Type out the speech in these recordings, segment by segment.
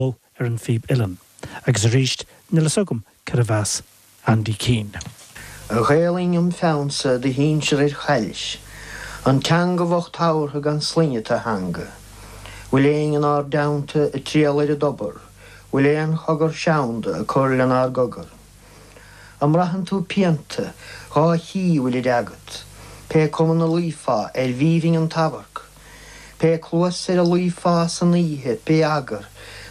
Ó, ar an phíb uilleann. Agus arís, níl fhios agam cérbh as Andy Keane. A Ghaelainn im pheannsa do shinsear ar chaillis, an teanga bhocht tabhartha gan sloinne tú a theanga. Bhfuil éinne inár dteannta ag triall ar an dtobar, bhfuil aon chogar seanda ag cur lenár gcogar? An mbraitheann tú pianta, dhá chích an bhfuilid agat, pé cuma na luífeá arbh aoibhinn an t-amharc? Pé cluas ar a luífeá san oíche, pé eagar,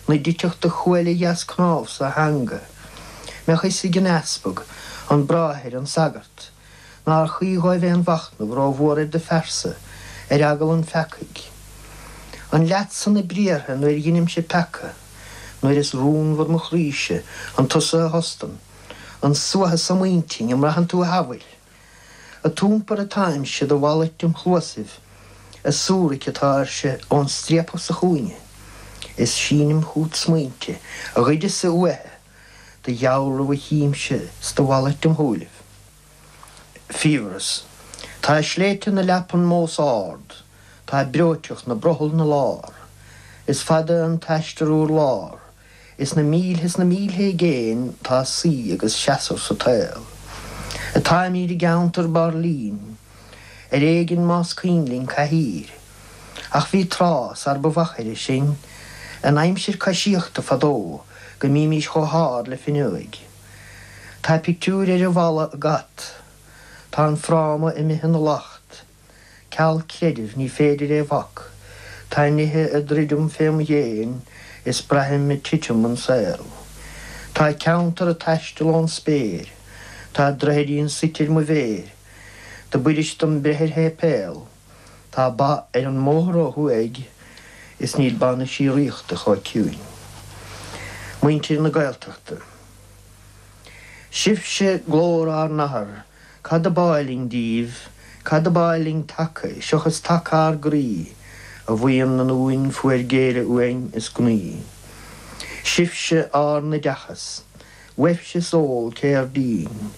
na dtitfeadh do chuail dheas cnámhsa a theanga. Bheadh fhios ag an easpag, an bráthair, an sagart, nár chuí dhóibh aon mhachnamh rómhór ar do phearsa, ar eagal an pheacaidh. An leatsa na briathra nuair dheinimse peaca, nuair is rúnmhar mo chroíse, an tusa a thostann, an suathadh so im intinn, an mbraitheann tú a shamhail? Ad iompar atáimse do mhalairt im chluasaibh, ag súrac atáirse ón striapach sa chúinne, is sínim chugat smaointe a ghoideas-sa uaithe do dhealramh a chímse 's do mhalairt im shúilibh. Fiabhras. Tá sléibhte na leapan mós ard, tá breoiteacht 'na brothall 'na lár, is fada an t-aistear urlár, Is na mílte is na mílte i gcéin tá suí agus seasamh sa tsaol. Atáimid i gceantar bráillín, ar éigin más cuimhin linn cathaoir. Ach bhí tráth, sar ba mhachaire sinn, in aimsir coisíochta fadó go mbímis chomh hard le fuinneoig. Tá pictiúir ar an bhfalla ag at. Tá an fráma imithe ina lacht. Ceal creidimh ní féidir é bhac, tá nithe ag druidim fém dhéin is braithim ag titim an saol. Tá ceantar ag taisteal ón spéir, tá droichidín suite ar mo mhéir, do b'fhuirist dom breith ar shéipéal, tá ba ar an mbóthar ó thuaidh is níl ba na síoraíochta chomh ciúin. Muintir na Gaeltachta. Sibhse glór ár n-athar. Cad ab áil linn díbh? Cad ab áil linn taca, seochas taca ár gcroí? A bhuíon na nDún fuair géilleadh uainn is gnaoi. Sibhse ár n-oideachas. Uaibhse is eol cér díobh inn.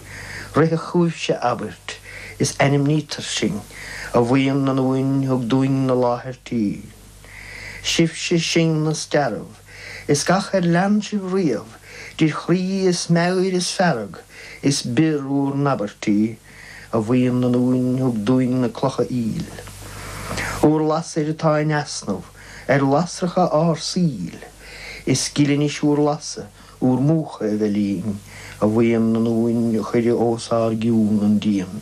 Ritheadh chugaibhse abairt, is ainmnítear sinn. A bhuíon na nDún thug dúinn na láthairtí. Sibhse sinn na stearbh is gach ar lean sibh riamh idir chroí is meabhair is fearg is bior bhur n-abairtí A bhuíon na nDún thug dúinn na clocha aoil Bhur lasair atá in easnamh ar lasracha ár saoil Is gile anois bhur lasadh bhur múchadh a bheith linn A bhuíon na nDún a chuir os ár gcionn an díon.